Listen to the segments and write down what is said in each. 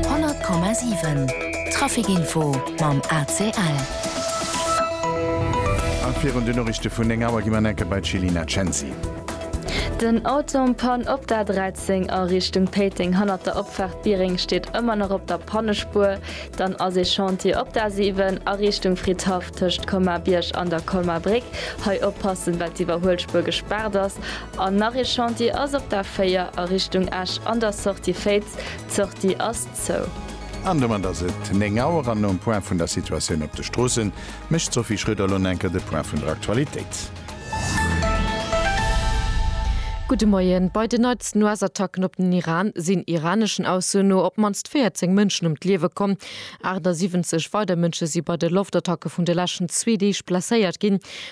100,7 Trafic Info mam ACL. A virun den Noriichte vun 9 Auer gi mer nach eng Kéier bei d'Chelina Cenci. Den Auton Panne op der 13 a Richtung Péiteng hannert der Opfaart Biereng steet ëmmer nach op der Pannespuer. Dann ass ee Chantier op der 7 a Richtung Fridhaff tëscht Colmar-Bierg an der Colmar-Bréck. Hei oppassen, well d'Iwwerhuelspuer gespaart ass. An nach ee Chantier ass op der 4 a Richtung Esch an der Sortie Féiz, d'Sortie ass zou. An domat ass et 9 Auer an nom Point vun der Situatioun op de Stroossen mécht d'Sophie Schröder lo enker de Point vun der Aktualitéit. Gudde Moien. Bei den neitsten US-Attacken op den Iran sinn iraneschen Aussoen no op d'mannst 14 Mënschen ëm d'Liewe komm. 78 weider Mënsche si bei de Loftattacke vun de leschten zwee Deeg blesséiert ginn.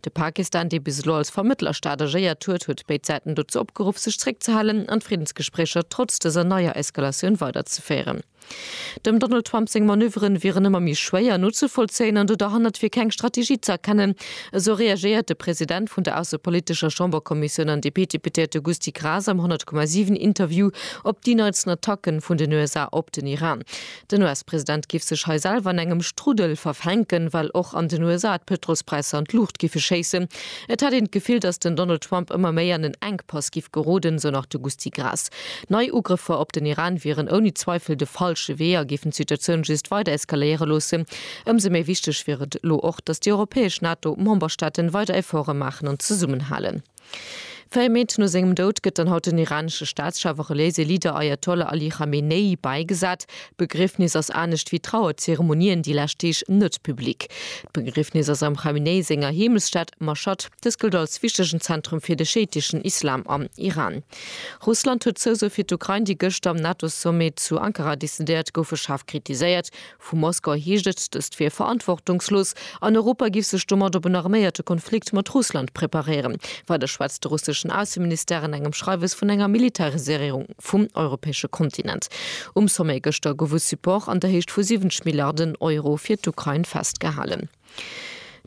De Pakistan, dee bis elo als Vermëttlerstaat agéiert huet, huet béid Säiten dozou opgeruff, sech zeréckzehalen an d'Friddensgespréicher trotz dëser neier Eskalatioun weiderzeféieren. Dem Donald Trump seng Manöveren wieren ëmmer méi schwéier nozevollzéien an do derhannert wier keng Strategie ze erkennen, esou reagéiert de President vun der aussepolitescher Chamberkommissioun an DP-Deputéierte Gusty Graas am 100,7 Interview op déi neitsten Attacke vun den USA op den Iran. Den US-President giff sech hei selwer an engem Struddel verfänken, well och an den USA d'Pëtrols-Präisser an d'Luucht giffe schéissen. Et hätt een d'Gefill, datt den Donald Trump ëmmer méi an en Enkpass giff geroden, esou nach de Gusty Graas. Nei Ugrëffer op den Iran wieren ouni Zweifel de falsche Wee a géifen d'Situatioun just weider eskaléiere loossen. Ëmsou méi wichteg wier et elo och, datt déi europäesch NATO-Memberstaaten weider Efforte maachen an zesummenhalen. Véier Méint no sengem Doud gëtt dann haut den iranesche Staatschef a reliéise Leader Ajatollah Ali Khamenei bäigesat. D'Begriefnis ass anescht wéi Trauerzeremonien déi lescht Deeg net public. D'Begriefnis ass am Khamenei senger Heemechtsstad Maschhad. Dës gëllt als wichtegen Zentrum fir de scheiteschen Islam am Iran. Russland huet d'Zousou fir d'Ukrain, déi gëschter am NATO-Sommet zu Ankara decidéiert goufe, schaarf kritiséiert. Vu Moskau heescht et, dëst wier verantwortungslos an Europa giff sech domat op en arméierte Konflikt mat Russland preparéieren. Weider schwätzt de russeschen Ausseministère an engem Schreiwes vun enger Militariséierung vum europäesche Kontinent. Um Sommet gëschter gouf e Support an der Héicht vu 70 Milliarden Euro fir d'Ukrain festgehalen.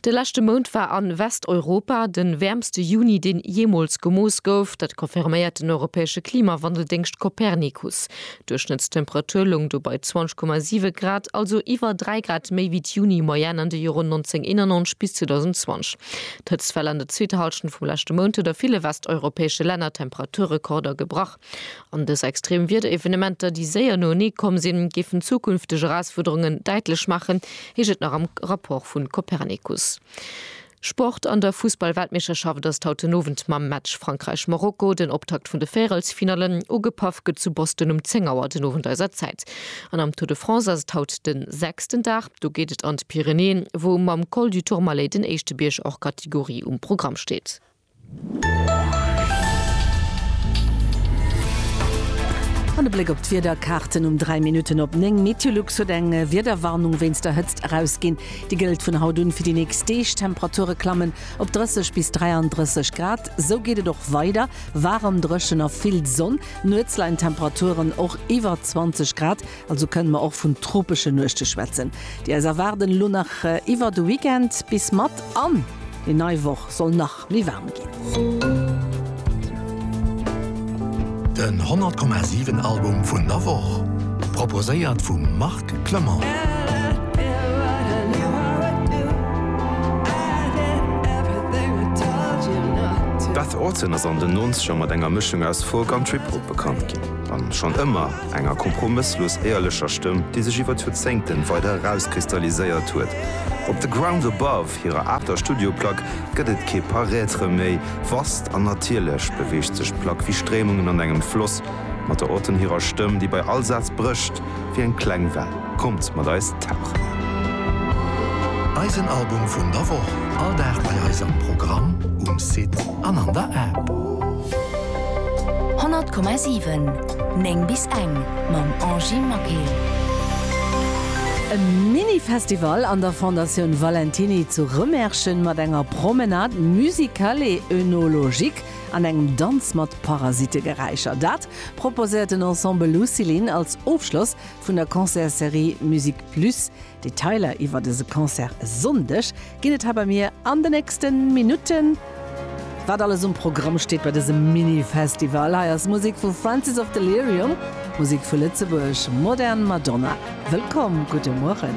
De leschte Mount war a Westeuropa de wäermste Juni, deen jeemools gemooss gouf. Dat confirméiert den europäesche Klimawandeldéngscht Copernicus. D'Duerchschnëttstemperatur loung do bei 20,7 Grad, also iwwer 3 Grad méi wéi d'Juni-Moyenne an de Joren 1991 bis 2020. D'Hëtztwell an der zweeter Hallschent vum leschte Mount huet a ville westeuropäesche Länner Temperaturrekorder gebrach. An dës extrem Wiederevenementer, déi séier noenee komm sinn, géifen zukünfteg Erausfuerderungen däitlech maachen, heescht et nach am Rapport vu Copernicus. Sport, An der Fussball-Weltmeeschterschaft ass et haut den Owend mam Match Frankräich-Marokko den Optakt vun de Véierelsfinallen. Ugepaff gëtt zu Boston um 10 Auer den Owend eiser Zäit. An am Tour de France ass et haut de sechsten Dag. Do geet et an d'Pyrenäen, wou mam Col du Tourmalet den éischte Bierg hors catégorie um Programm steet. An e Bléck op d'Wiederkaarten um 3 Minutten op 9. Meteolux huet eng Wiederwarnung wéinst der Hëtzt erausginn. Déi gëllt vun haut un fir déi nächst Deeg. D'Temperature klammen op 30 bis 33 Grad. Sou geet et och weider, waarem, dréchen a vill Sonn. Nuets leien d'Temperaturen och iwwer 20 Grad. Also kënnen mer och vun tropeschen Nuechte schwätzen, déi eis erwaarden. Elo nach iwwert de Weekend bis mat an déi nei Woch soll nach méi waarm ginn. Den 100 Komma 7 Album vun der Woch, proposéiert vum Marc Clement. D'Beth Orton ass an den Nonzeger mat enger Mëschung aus Folk an Trip-Hop bekannt ginn, an schonn ëmmer. Enger kompromësslos éierlecher Stëmm, déi sech iwwer d'Joerzéngten weider erauskristalliséiert huet. Op The Ground Above, hirer aachter Studioplack, gëtt et kee Paraître méi. Vast an natierlech beweegt sech d'Plack wéi Stréimungen an engem Floss, mat der Auton hirer Stëmm, déi bei all Saz brécht wéi eng kleng Well. Kommt mat eis tauchen! Eisen Album vun der Woch, all Dag bei eis am Programm, um Site an an der App. 100,7. 9 bis eng mam Angie Maquet. E Mini-Festival an der Fondatioun Valentiny zu Remerschen mat enger Promenade musicale et œnologique an engem Danz mat Parasitegeräischer. Dat proposéiert den Ensemble Lucilin als Ofschloss vun der Concertsserie Musique Plus Detailer iwwer dëse Concert e Sonndeg ginn et hei bei mir an de nächste Minutten. Wat alles um Programm steet bei dësem Mini-Festival, hei ass Musek vu Francis of Delirium, Musek vu Lëtzebuerg, Modern Madonna. Wëllkomm, gudde Mueren.